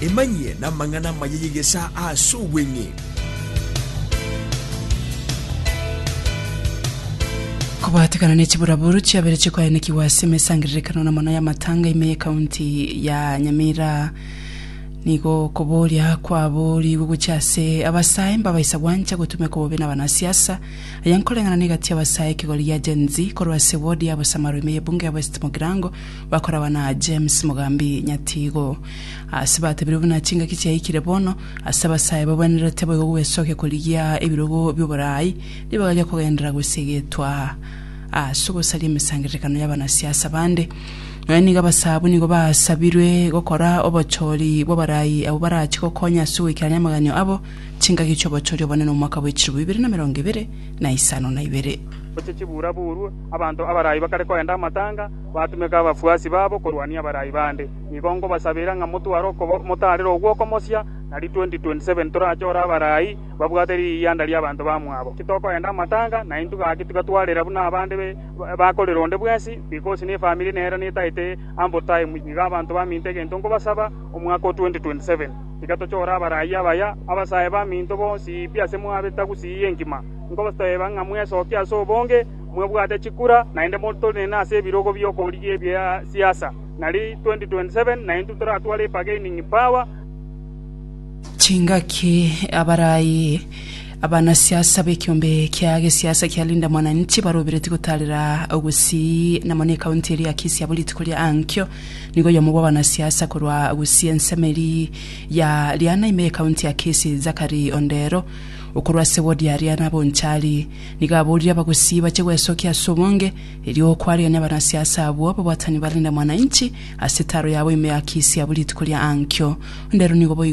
Emanyie namang'ana amaya y'egesaa ase obweng'e. Kobatekana ne chiburaburu chiabere chikoaenekigwa ase emesangererekano na mono y'amatanga ime y'ekaunti ya Nyamira nigo koboria kwaboorigwe gochia ase abasae mbabaisa gwancha gotumeka bobe n'abanasiasa aya nkoreng'ana na egati y'abasae ekegori gia Gen-Z korwa ase ward ya Bosamaro ime y'ebunge ya West Mogirango Bakoragwa na James Mogambi Nyatigo. Ase batebirwe buna chingaki chiaikire bono, ase abasae babwenerete boigo gwesokia korigia ebirogo bi'oboraai, ribaga ria kogenderera gwesegetwa ase ogosaria emesangererekano y'abanasiasa bande. Nonya nigo abasaabwo nigo basabirwe gokora obochori bw'abarai abwo barachie gokonya ase goikerania amaganio abo chingaki chi'obochori obonene omwaka bw'echilifu bibere na emerongo ebere na isano na ibere. Gochia chibuura-buurwe, abanto abarai bakare koenda amatanga. Batumeka abafuasi babo korwania abarai bande. Nigo nkobasabera ng'a motware okoba motaarera ogwo okomochia, na ri 2027 torachore abarai babwate riyianda ri'abanto bamwabo. Titokoenda amatanga, naintwe gaki tigatwarera buna abande bakorera onde bwensi, because nefamiri nero netaete ample time. Nigo abanto baminto egento nkobasaba, omwaka o 2027, tiga tochore abarai abaya, abasae baminto bonsi pi ase mwabe tagusii enkima. Nkobateeba ng'a mwesokie ase obonge, Mwebwate chikura naende motenene ase ebirogo bi'okorigia ebia siasa, nari 2027 naintwe toratware ebargaining power. Chingaki abarai abanasiasa b'ekiombe kia gesiasa kia Linda Mwananchi baroberetie gotaarera gusii na mono ekaunti eria ya Kisii abo rituko ria ankio nigo oyomo bw'abanasiasa korwa gusii ensemo eria ya Riana ime y'ekaunti ya Kisii Zachary Ondero okorwa ase ward ya Riana Bonchari Nigo aborire abagosii bache gwesokia ase obonge, erio okwarigia nabanasiasa abwo ababwatani barinde mwananchi ase etaro yabo ime ya Kisii abwo rituko ria ankio. Onde ero nigo boigo.